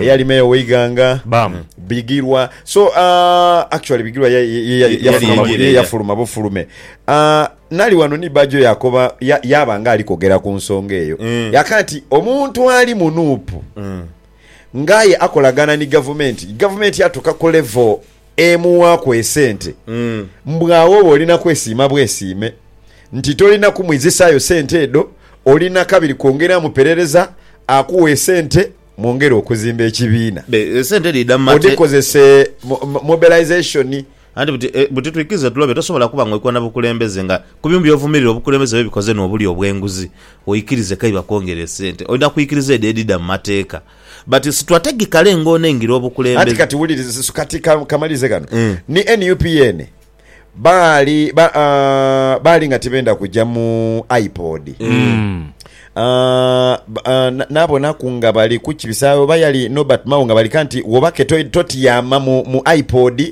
eyali meeya oweighanga Bam. bigirwa so uh, actually bigirwa ya- ya- ya- Yali yafuluma- yengereera. ye- yafuluma bufulume Uh, nali wano ni bajo yakoba ya- yaba nga ali kogera ku nsonga eyo Mm. yaka nti omuntu ali mu nuupu Mm. ngaye akolagana ni gavumenti gavumenti yatuka ku levo emuwaaku esente Mm. mbwawo oba olina kwesiima bwesiime nti tolina kumwizisaayo sente edo olina kabiri kwongeramu perereza akuwa esente Mwongere okuzimba ekibiina. Be, esente dhidha mu mate. Mudhikozese mu, mu, mobilization. Anti buti, e, buti twikirize tulobe, tosobola kuba nga oikoona na bukulembeze nga ku bintu byovumirira obukulembeze bwebikoze no obulya obwenguzi, oikirize kei bakwongere esente. Oidha kwikiriza edho edhidha mu mateeka. But situategikale ngono engira Anti obukulembeze. kati wuliriza, kati ka, kamalirize ghano. Ni nup yeene. Baali ba, ah, baali nga tibenda kuja mu iPod. Ah, ba- ah, na- nabonaku nga bali kukibisa oba yali Norbert Mao nga bali kanti wobake to- totyama mu, mu iPod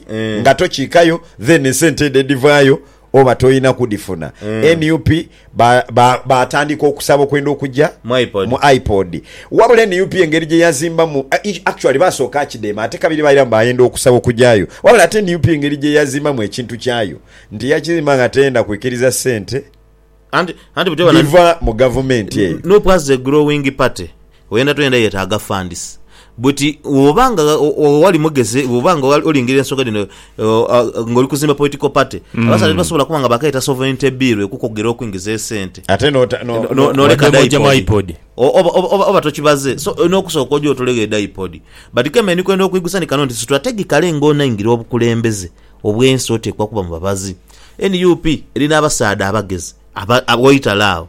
nga tokiikayo then esente edho edivaayo oba tolina kudifuna. NUP ba, ba, baatandika okusaba okwenda okugya Mu iPod. mu iPod. Wabula nup engeri gye yazimbamu, a- i- actually baasooka akideema ate kabiri baira mbu baayenda okusaba okugyayo. Wabula ate nup engeri gye yazimbamu ekintu kyayo nti yakizimba nga teyenda kwikiriza ssente Anti, anti buteba na dhiva mu gavumenti eyo. nup as a growing party Oyenda toyenda yetaaga funds but woba nga wali mugezi woba nga olingirira ensonga dhino nga oli kuzimba political party abasaadha tibasobola kuba nga bakaeta sovereignty bill ekukogera okuingiza esente Ate no, no, no, noleka Wadde mojjemu dipodi iPod. O- oba, oba, oba, oba tokibaze so olina okusooka oje otulegho edaipodi but keme ndikwenda okwigusa ni kano nti strategically nga onaingira obukulembeze obwensi otekwa kuba mubabazi nup eri nabasaadha abagezi aba, aba waitale agho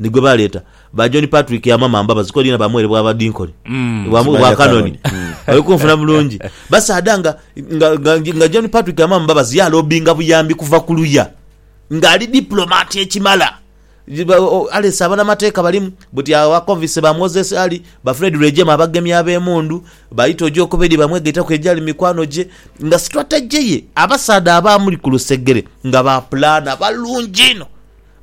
ni gwe baleeta ba John Patrick Amama Mbabazi ko liina baamuwerebwa Abadinkoni bwa mu- bwa Kanoni oli kunfuna bulungi basaadha nga nga- nga- nga John Patrick Amama Mbabazi yalobinga buyambi kuva ku luya nga ali diplomat ekimala Ba- o- Alex abanamateeka balimu buti awo ba Convicts ba Moses Ali ba Fred Rwejema abagemi ab'emundu ba Itoje Okubedi bamwegaitaku egyali mikwano gye nga strategy ye abasaadha abaamuli ku lusegere nga ba pulaana balungi inho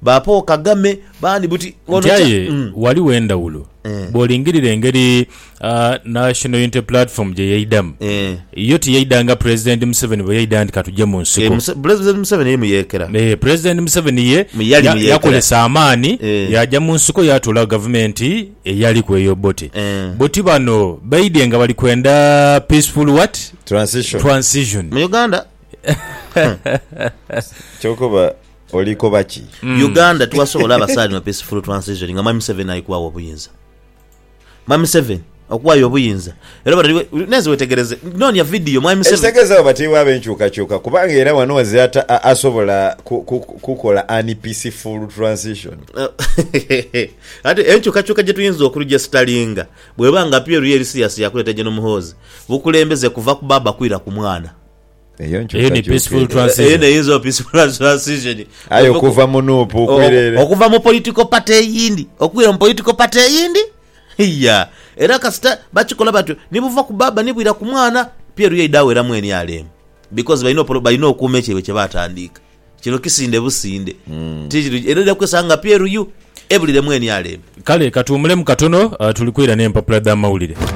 Ba Paul Kagame bandi buti ng'ono Nti kya aye mm. ghaligho endhawulo Eh. bw'olingirira engeri ah, National Unity Platform gye yaidhamu. Eh. Yo tiyaidha nga Pulezidenti Museveni bwe yaidha nti katugye mu Eh, nsiko. Muse- Pulezidenti Museveni ye muyeekera. Eh, Pulezidenti Museveni ye Mu yali ya- muyeekera. yakozesa amaani Eh. yaja mu nsiko yatoolawo gavumenti eyaliku eya Obote. Eh. Buti bano baidhye nga bali kwenda peaceful what? Transition. Transition. Mu Uganda Kyoka oba Olikoba ki? Uganda tiwasobola abasaali no peace fulu transition nga mwami Museveni aikuwawo obuyinza. Mwami Museveni okuwayo obuyinza era obona eri nenze wetegereze nonya video mwami Museveni. Ekitegeza abo batibwa abenkyukakyuka kubanga era wano wazira ta asobola ku ku kukola ani peace fulu transition. Ati enkyukakyuka gyetuyinza okurujesitalinga bweba nga appeal ye eri serious yakuleta General Muhoozi bukulembeze kuva ku baaba kwira ku mwana. eyo ni peaceful transition. Eyo neyinza oba peaceful transition. Aye okuva mu nup okwira ere. Okuva mu political party eyindi okwira mu political party eyindi iya. Era kasita bakikola batyo ni buva ku baaba ni bwira ku mwana, pyeru yaidha aweramu nrm because balina okuuma ekyo kyaibwe kye baatandiika. Kino kisinde businde. Ti kiri, era oja kwesanga nga pyeru yu ebuliremu nrm. Kale katuwumulemu katono tuli kwira n'empapula dh'amawulire.